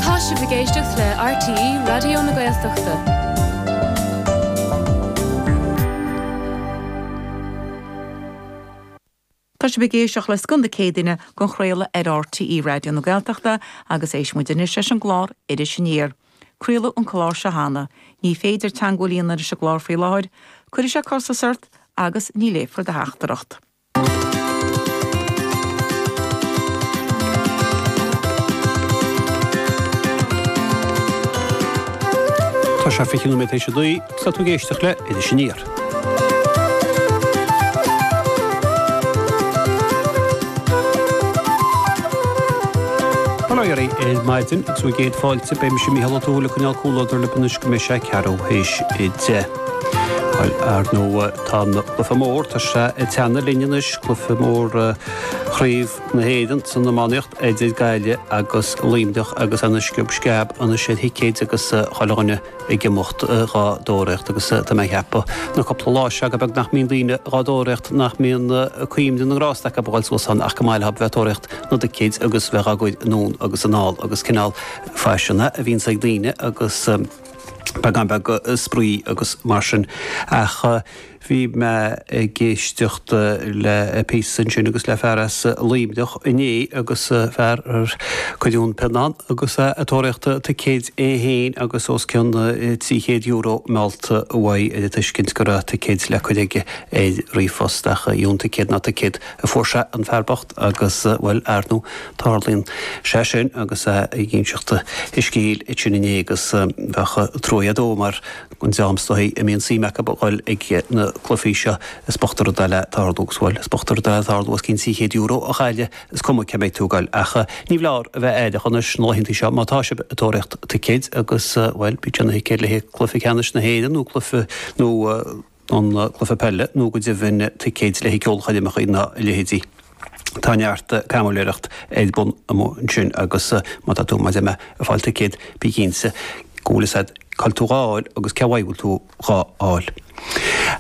Tá sibh ag éisteacht le RTÉ Raidió na Gaeltachta. Tá sibh ag éisteacht le Scoth na Céadaoine den chraoladh ar RTÉ Raidió na Gaeltachta agus éistfidh muid anois leis an gclár Iris Aniar. Craoladh an clár seo cheana. Ní féidir teangmháil a dhéanamh leis an gclár faoi láthair. Cuirfidh sé costas ort agus ní léifear do theachtaireacht. Tá sé 20 nóiméad tar éis a naoi agus tá tú ag éisteacht le Iris Aniar. Bail oraibh ar maidin agus céad fáilte beidh mise Mícheál Ó Tuathail ag coinneáil comhluadar libh anois go mbeidh sé ceathrú théis a deich. Ar ndóigh. Tá an cluife mór tá sé ag teannadh linn anois, cluife mór Chraobh na hÉireann san iománaíocht idir Gaillimh agus Luimneach agus ina sciob sceab anois ar thicéid agus chuile dhuine ag imeacht dhá dtóraíocht agus tá mé a cheapadh na cúpla lá seo gur beag nach mbíonn daoine dhá dtóraíocht nach mbíonn cuimhne na ngrást acu a ghabháil suas ann ach gur maith leob a bheith ag tóraíocht na dticéid agus bheith dhá gcur anonn agus anall agus cineál faisean a bhíonn ag daoine agus Beagán beag spraoi agus mar sin ach bhí mé ag éisteacht le píosa ansin agus le fear as Luimneach inné agus fear ar cuireadh an pionna ann agus é ag tóraíocht ticéid é féin agus os cionn €300 meallta uaidh ar an tuiscint go raibh ticéid le cur aige ar ríomhphost ach dheamhan ticéad ná ticéad Fuair sé an fear bocht agus, bhuel, ar ndóigh, tarlaíonn sé sin agus é ag inseacht a scéil ansin inné agus bheadh truaigh agat dó mar go ndeá msa é a mbíonn suim acu a dhul ag na cluifí seo. Is bocht an rud é le tarlú agus, bhuel, is bocht an rud é le tarlú os cionn trí chéad euro a chailleadh, is cuma cé mbeidh tú ag dul ach níorbh fholáir a bheith aireach anois na laethanta seo má tá sibh ag tóraíocht ticéid agus, bhuel, bíodh sé ina thicéad le haghaidh cluiche ceannais na hÉireann nó cluiche, nó. don gcluiche peile nó go deimhin ticéid le haghaidh ceolchoirmeacha ná a leithéidí. Tá neart caimiléireacht ar bun amuigh ansin agus má tá tú maidir le fáil ticéad bí cinnte go bhfuil a fhios agat cá bhfuil tú dhá fháil agus cé uaidh go bhfuil tú dhá fháil.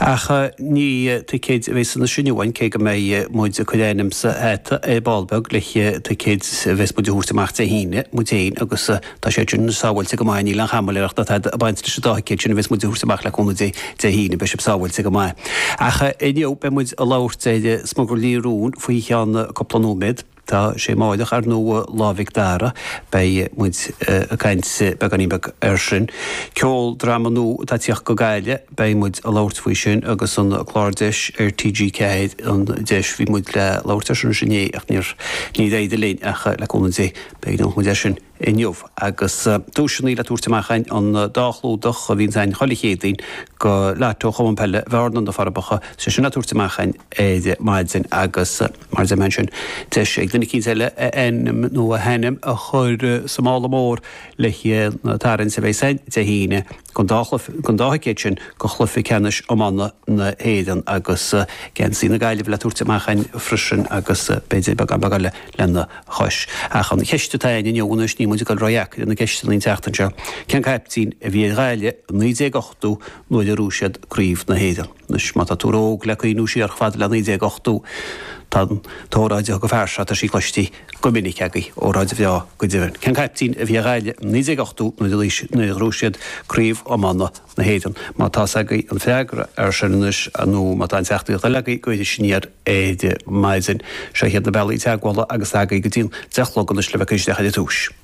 Ach ní ticéid a bheidh sa seanchas inniu againn cé go mbeidh muid ag cur ainm sa hata ar ball beag le ticéid a bheas muid a thabhairt amach Dé hAoine muid féin agus Tá sé sin sábháilte go maith, níl aon chaimiléireacht ag baint leis an dá thicéad sin a bheas muid a thabhairt amach le cúnamh Dé, Dé hAoine beidh sibh sábháilte go maith. Ach inniu beidh muid ag labhairt ar smugairlí róin faoi cheann cúpla nóiméad. Tá sé amáireach ar ndóigh Lá Mhic Dara, beidh muid ag caint beagáinín beag ar sin. Ceoldráma nua atá ag tíocht go Gaillimh, beidh muid ag labhairt faoi sin agus an clár Deis ar TG4, An Deis, bhí muid le labhairt ar sin inné ach níor éirigh linn ach le cúnamh Dé Beidh an chuma air sin inniu agus duaiseanna le tabhairt amach againn, an dá chlúdach a bhíonn againn chuile Chéadaoin go Lotto Chumann Peile Bhearna, Na Forbacha. Iad sin le tabhairt amach againn ar maidin agus mar a dúirt mé ansin, deis ag duine eicínt eile a ainm nó a hainm a chur sa mála mór le haghaidh an tarraingt a bheas againn Dé hAoine. Don dá thicéad sin go Chluiche Ceannais Iomána na hÉireann agus geansaí na Gaillimhe le tabhairt amach againn freisin agus b'fhéidir beagán beag eile lena chois. Ach an cheist atá againn inniu, anois níl muid ag dul ródheacair ar na ceisteanna an tseachtain seo, cén caiptín a bhí ar Ghaillimh i 1980 nuair a ghnóthaigh siad Craobh na hÉireann? Anois má tá tú ró-óg le cuimhniú siar chomh fada le 1980, tá an óráid a thug an fear seo, tá sí cloiste, go minic agaibh óráid bhreá go deimhin. Cén caiptín a bhí ag Gaillimh i 1980 nuair a luígh nuair a ghnóthaigh siad Craobh Iomána na hÉireann? Má tá's agaibh an freagra ar sin anois nó má tá aon teachtaireacht eile agaibh go Iris Aniar ar maidin, seo iad na bealaí teagmhála agus tá agaibh go dtí'n deich a chlog anois le bheith isteach ar an duais.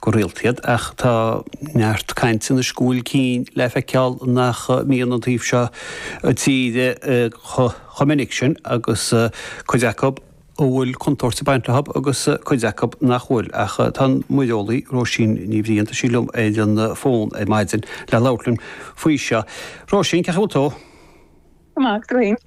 go rialta iad ach tá neart caint anois go bhfuil cinn le feiceáil nach mbíonn an taobh seo tíre chomh minic sin agus cuid acu a bhfuil contúirt ag baint leo agus cuid acu nach bhfuil. Ach tá an muireolaí Róisín Ní Bhriain, tá sí liom ar an bhfón ar maidin le labhairt linn faoi seo. Róisín, cén chaoi a bhfuil tú? Go maith, go tréan.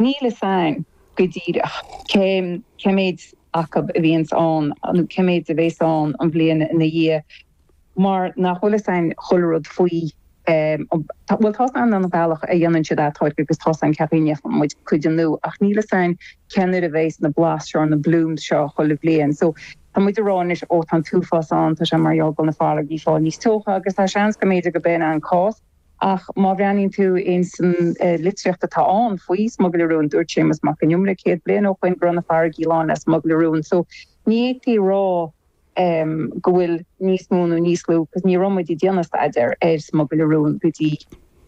Níl fhios a'ainn go díreach cé cé méid acu a bhíonns ann nó cé méid a bhéas ann an bhliain ina dhiaidh mar nach bhfuil fhios a'ainn chuile rud faoi. Bhuel tá 's a'ainn an bealach a dhéanann siad atáirgeadh agus tá 's a'ainn cén chaoi a ndéanfaidh muid cuid annú ach níl fhios a'ainn cén uair a bhéas na blás seo, na blooms seo chuile bhliain so tá muid a' rá anois ó tá an t-uafás ann tá sé mar gheall go bhfuil na farraigí a' fáil níos teocha agus tá seans go mb'fhéidir go b'in an cás. Ach má bhreathnaíonn tú ins an litríocht atá ann faoi smugairle róin, dúirt Séamus Mac an Iomaire céad bliain ó shoin go raibh na farraigí lán le smugairle róin so ní fhéadfaí a rá go bhfuil níos mó nó níos lú because ní raibh muid ag déanamh staidéar ar smugairle róin go dtí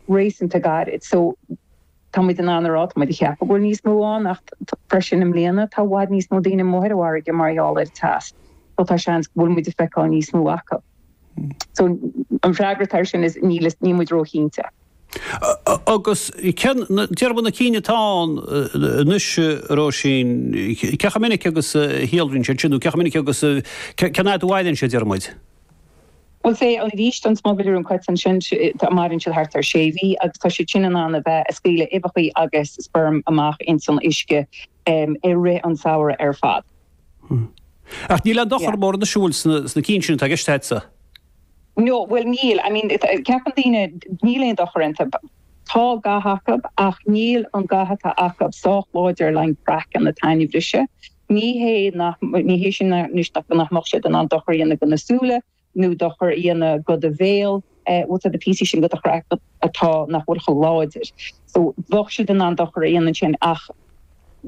réasúnta gairid so Tá muid in ann a rá, tá muid ag ceapadh go bhfuil níos mó ann ach freisin i mbliana tá i bhfad níos mó daoine amuigh ar an bhfarraige mar gheall ar an teas so tá seans go bhfuil muid ag feiceáil níos mó acu. So an freagra atá ar sin is níl níl muid róchinnte. Agus cén, déarfaidh muid, na cinn atá ann anois Róisín, cé chomh minic agus a shíolraíonn siad sin nó cé chomh minic agus cén fhad a mhaireann siad déarfaidh muid? Bhuel, sea, i gcás an smugairle róin coiteann sin, maireann siad thart ar sé mhí agus tá siad sin in ann a bheith ag scaoileadh uibheacha agus sperm amach ins an uisce i rith an samhradh ar fad. Hmm. Ach níl aon dochar mórán ag siúl leis na cinn sin atá i gceist agatsa? No, bhuel, níl, I mean, ceapann daoine níl aon dochar iontu. Tá ga acu ach níl an ga atá acu sách láidir le an craiceann atá againn a bhriseadh. Ní hé, ní hé sin anois nach, nach mbeadh siad in ann dochar a dhéanamh go na súile nó dochar a dhéanamh go do bhéal, bhuel tá na píosaí sin dhe do chraiceann atá, nach bhfuil chomh láidir. So bheadh siad in ann dochar a dhéanamh ansin ach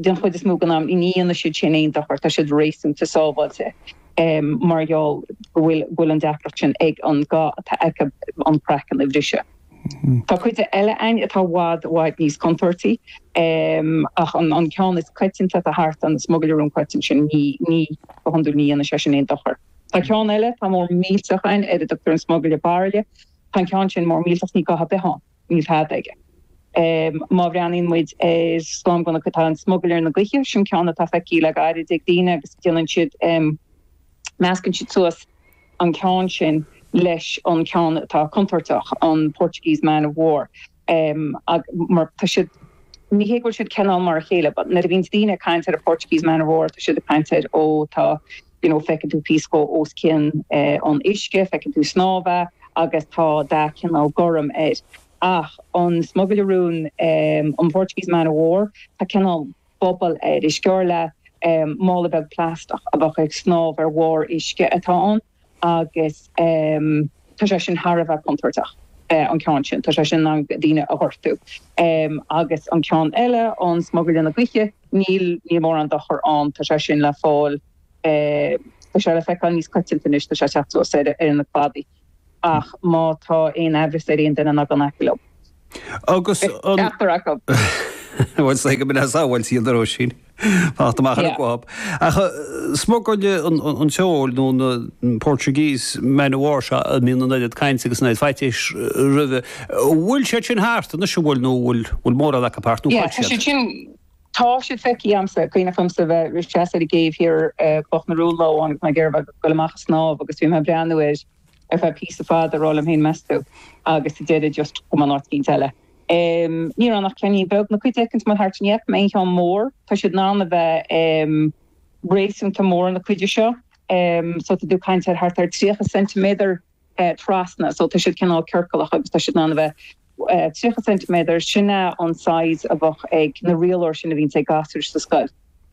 den chuid is mó den am ní dhéanfaidh siad sin aon dochar, tá siad réasúnta sábháilte mar gheall go bhfuil, go bhfuil an deacracht sin ag an, gá atá acu an craiceann a bhriseadh. Tá cuid eile ann atá i bhfad, i bhfad níos contúirtí, ach an ceann is coitianta atá thart, an smugairle róin coiteann sin, ní, ní, go hiondúil ní dhéanann sé sin aon dochar. Tá ceann eile atá mór millteach ann, ar a dtugtar an smugairle bairille. Tá an ceann sin mór millteach, níl ga ar bith ann, níl tada aige. Má bhreathnaíonn muid ar slám gunna, tá an smugairle na gaoithe, sin ceann atá feicthe le gairid ag daoine agus déanann siad, meascann siad suas an ceann sin leis an ceann atá contúirteach, an Portuguese Man of War, mar tá siad, ní hé go bhfuil siad, cineál mar a chéile but nuair a bhíonns daoine ag caint ar an Portuguese Man of War tá siad ag caint ar ó tá you know feiceann tú píosa dhó os cionn an uisce, feiceann tú snámha agus tá dath cineál gorm air ach an Smugairle Róin, an Portuguese Man of War, tá cineál. bubble air. Is cosúil le mála beag plaisteach a bheadh ag snámh ar bharr uisce atá ann agus tá sé sin thar a bheith contúirteach, an ceann sin, tá sé sin in ann daoine a ghortú agus an ceann eile, an Smugairle na Gaoithe, níl mórán dochair ann, tá sé sin le fáil, tá sé le feiceáil níos coitianta anois, tá sé ag teacht suas ar na cladaí. ach má tá aon amhras ar aon duine ná gabh in aice leo. Agus an. Is ceachtar acu. Bhuel, is léir go mbeidh sábháilt iad le Róisín. Fanacht amach uathu ar aon chaoi. Ach an smugairle an tseoil nó na Portuguese man of war seo a mbíonn an oiread cainte agus an oiread faitíos roimhe. Bhfuil siad sin thart anois, an bhfuil, nó bhfuil mórán acu thart? Tá siad feicthe agamsa, cuimhne agamsa bheith i mo sheasamh ar an gcéibh thiar ar Chloch na Rón lá amháin agus mé ag iarraidh dul amach a snámh agus bhí mé ag breathnú air ar feadh píosa fada ag rá liom féin meas tú agus sa deireadh just chuaigh mé go háit eicínt eile. Ní raibh ann ach ceainnín beag nó cuid eicínt amuigh thart. Ní fhaca mé aon cheann mór. Tá siad in ann a bheith réasúnta mór na cinn seo. Tá tú ag caint ar thart ar 30 ceintiméadar. trasna so tá siad cineál ciorcalach agus tá siad in ann a bheith 30 ceintiméadar, sin é an size a bheadh ar na rialóir sin a bhíonns ag gasúir sa scoil.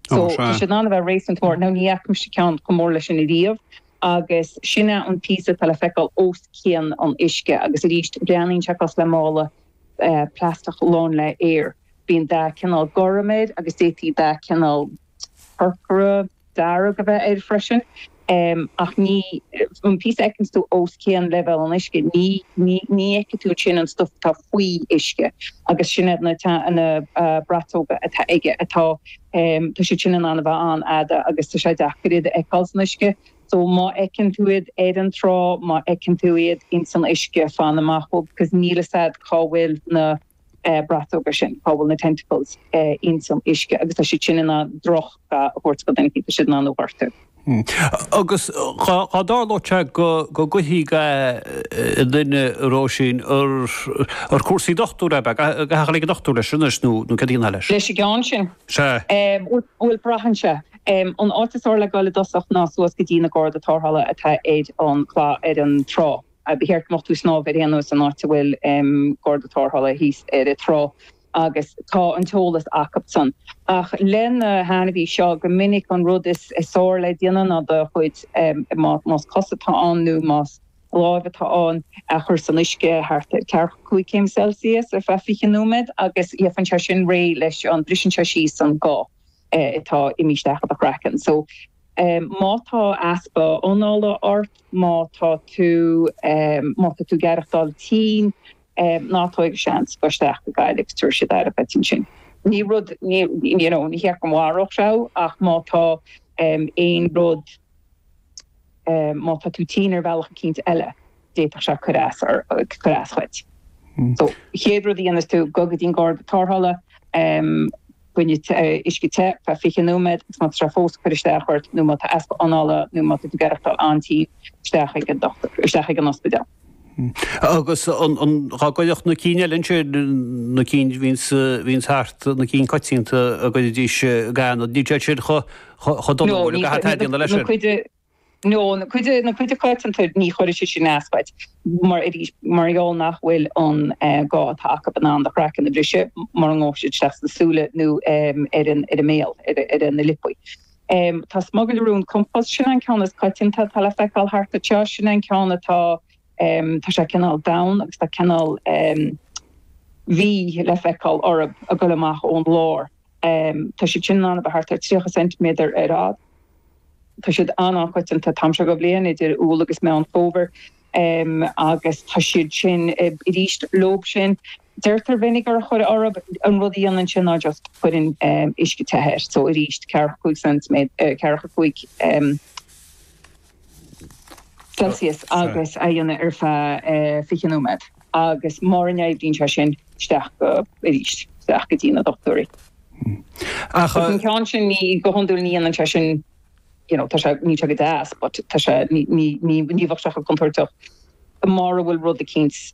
So tá siad in ann a bheith réasúnta mór. Now ní fhaca mise ceann chomh mór leis sin ariamh agus sin é an píosa atá le feiceáil os cionn an uisce agus arís breathnaíonn sé cosúil le mála plaisteach lán le aer. Bíonn dath cineál gorm air agus d'fhéadfadh dath cineál corcra, dearg a bheith air freisin ach níl an píosa a fheiceanns tú os cionn leibhéal an uisce, ní fheicfidh tú ansin an stuif atá faoi uisce agus sin iad na braiteoga atá aige atá, tá siad sin in ann a bheith an-fhada agus tá sé deacair iad a fheiceáil san uisce. So má fheiceann tú iad ar an trá, má fheiceann tú iad insan uisce, fan amach uathu because níl 'fhios a'd cá bhfuil na. braiteoga sin, cá bhfuil na tentacles ins an uisce agus tá siad sin in ann droch ga a thabhairt do dhuine, tá siad in ann thú a ghortú. Agus dá dtarlódh sé go gcuirfí ga i nduine, Róisín, an cúrsaí dochtúra a bheadh, go rachfá ag an dochtúir leis anois nó cad a dhéanfá leis? Leis an gceann sin? Sea. Bhuel braitheann sé. An áit is fhearr le dul i dtosach ná suas go dtí na Garda Tárthála atá ar an ar an trá. Ba cheart go mbeadh tú ag snámh ar aon nós in áit a bhfuil garda tarrthála thíos ar an trá agus tá an t-eolas acusan. Ach leis an ainmhí seo, go minic an rud is fearr le déanamh ná do chuid, más cos atá ann nó más lámh atá ann, a chur san uisce thart ar ceathracha cúig céim Celsius ar feadh fiche nóiméad agus faigheann sé sin réidh leis an, briseann sé síos an ga. atá imithe isteach i do chraiceann. So má tá easpa anála ort, má tá tú má tá tú ag aireachtáil tinn, ná tóg aon seans gabh isteach go Gaillimh is tabharfaidh siad aire duit ansin. Ní rud ní you know ní hé go mharódh sé thú ach má tá aon rud Má tá tú tinn ar bhealach eicínt eile, d'fhéadfadh sé cur as duit. So, chéad rud a dhéanfas tú, gabh go dtí'n garda tarrthála, bain le uisce te, ar feadh 20 nóiméad, agus má tá sé fós ag cur isteach ort, nó má tá easpa anála nó má tá tú ag aireachtáil an-tinn, isteach chuig an dochtúir, isteach chuig an ospidéal. Agus dá gcuirfeadh na cinn eile ansin, na cinn a bhíonns thart, na cinn coitianta dá gcuirfidís ga ionat, níl siad sin chomh dona nó céard atá le déanamh leis sin. No, an chuid coitianta ní chuirfidh siad sin as duit mar, arís, mar gheall nach bhfuil an ga atá acu in ann do chraiceann a bhriseadh mura ngabhadh siad isteach sna súile nó ar an mbéal, ar na liopaí. Em, tá smugairle róin compáis, sin é an ceann is coitianta atá le feiceáil thart anseo, sin é an ceann atá, em, tá sé cineál donn agus tá cineál, em, V le feiceáil orthub ag goil amach ón lár. Em, tá siad sin in ann a bheith thart ar tríocha ceintiméadar ar fhad. Tá siad an-an-choitianta an t-am seo den bhliain, idir Iúil agus Meán Fómhair. Em, agus tá siad sin, em, arís leob sin. Deirtear go minic gur cuir ort an rud a dhéanann sé ná just cuireann uisce te air. So arís, ceithre a cúig ceintiméadar, eh, ceithre a cúig, em, Celsius agus a dhéanamh ar feadh, eh, fiche nóiméad. Agus mura n-oibríonn sé sin, isteach go, arís, isteach go dtí na dochtúirí. Ach. Ach an ceann sin ní, go hiondúil ní dhéanann sé sin, you know, tá sé, níl sé go deas but tá sé, ní, ní, ní, ní bheadh sé chomh contúirteach mura bhfuil rud eicínt.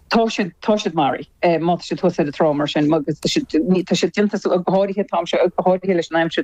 Tá siad, tá siad marbh má tá siad thuas ar an trá mar sin, agus tá siad, tá siad déanta go háirithe, tá siad go háirithe leis an aimsir.